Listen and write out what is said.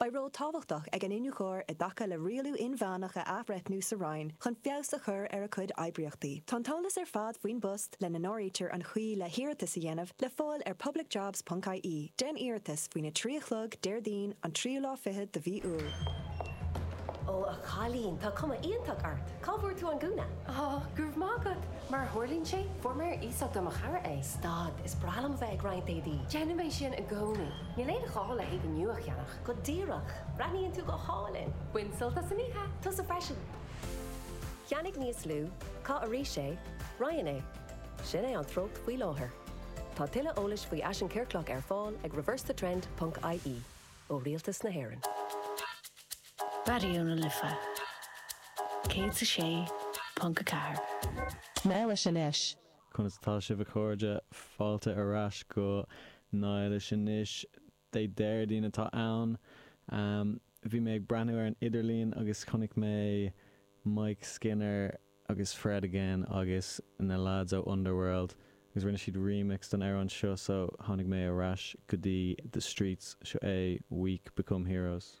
Beidh ról tábhachtach ag an iniúchóir i dtaca le rialú inmheánach a athbhreithniú sa Roinn chun feabhas a chur ar a cuid oibríochtaí. Tá an t-eolas ar fad faoin bpost, lena n-áirítear an chaoi le hiarratas a dhéanamh, le fáil ar publicjobs.ie. Déan iarratas faoin 3 a chlog Déardaoin an tríú lá fichead de mhí Iúil. Ó, a chailín, tá cuma iontach ort! Cá bhfuair tú an gúna? Ó, go raibh maith agat! Mar a tharlaíonn sé, fuair mé ar iasacht ó mo chara é. Stad, is breá liom a bheith ag roinnt éadaí. Déanaim é sin i gcónaí. Níl aon ghá le héadaí nua a cheannach. Go díreach! Breathnaíonn tú go hálainn! Bain sult as an oíche! Tusa freisin! Ceannaigh níos lú, caith arís é, roinn é. Sin é an treocht faoi láthair. Tá tuilleadh eolais faoi fhaisean ciorclach ar fáil ag reversethetrend ponc ie, ó Rialtas na hÉireann. Raidió na Life 106.4. Mail leis anois Conas atá sibh a chairde? Fáilte ar ais go Niall is anois Dé Déardaoin atá ann. Bhí mé ag breathnú ar an idirlíon agus chonaic mé Mike Skinner agus Fred again agus na leaids ó Underworld agus rinne siad remix don amhrán seo so tháinig mé ar ais go dtí The Streets, seo é Weak Become Heroes.